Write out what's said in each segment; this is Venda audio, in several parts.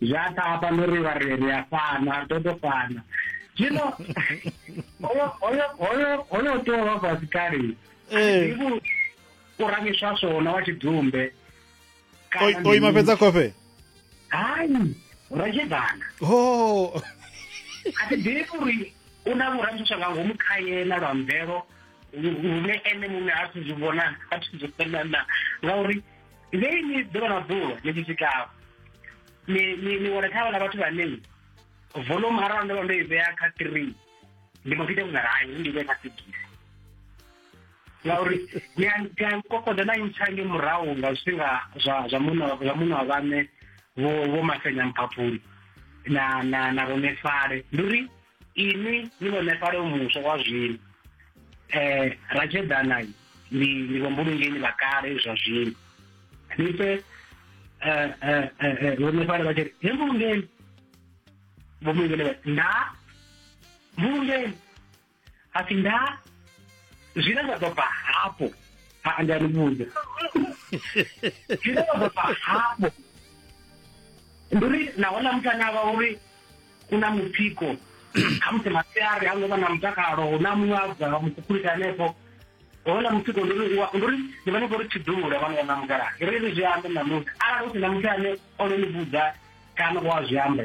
zwi a tapa no ri vha ri ri a fana ri ḓo to fana zwino hoyo hoyo hoyo hoyo tea u vha fhasi kale ivo u ramiswa swona wa tshidzumbe o ima fhedza kofe hai ra tshi bana ho a ti ḓivhi uri u na vhuramiswa nga ngomu kha yena lwa mvelo lune ene muṋe a thi zwi vhona a thi zwi fhelana ngauri ngei ni ḓuvha na ḓuvha ni tshi swikaho ni wana kha vhana vhathu vhane volume arali ndo vha ndo i vhea kha three ndi mbo ḓi ita vhungaranyi ndi vhea kha sigisi ngauri ni a kokoda na ntsha nge murahu nga zwifhinga zwa zwa muṋa zwa muṋa wa vhaṋe vho vho masenya mphaphuli na na na vhone fale ndi uri inwi ni vhoṋefhali muswa wa zwino um ratshedana ndi ndi vhombulungeni vha kale zwa zwino ni pfe vhoṋefhali vha tshi ri he mbulungeni vhombulungeni nda mbulungeni a pfi nda zwine zwa ḓo bva hafho a nda ni vhudza zwine zwa ḓo bva hafho ndi uri nahone muthu ane a vha uri u na mutsiko khamusi masiari ha ngo vha na mutakalo hu na muṅwe a bva mukhukhulisa hanefho hona mutsiko ndi uri ndi uri ndi vha ni khou ri tshidulo vha ni wana mukalaha ri ri zwi ambe ṋamusi arali hu si na muthu ane o no ni vhudza kana wa zwi amba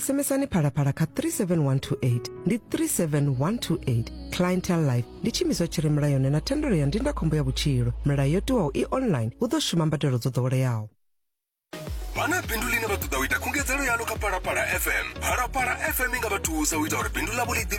SMSani phalaphala kha 37128 ndi 37128 clientele life ndi tshiimiswa tshi re mulayoni na thendelo ya ndindakhombo ya vhutshilo milayo yo tiwaho i online hu ḓo shuma mbadelo dzo ḓoweleaho vha na bindu ḽine vha ṱoḓa u ita khungedzelo yalo kha phalaphala fm phalaphala fm i nga vha thusa u ita uri bindu ḽavho ḽi ḓivhe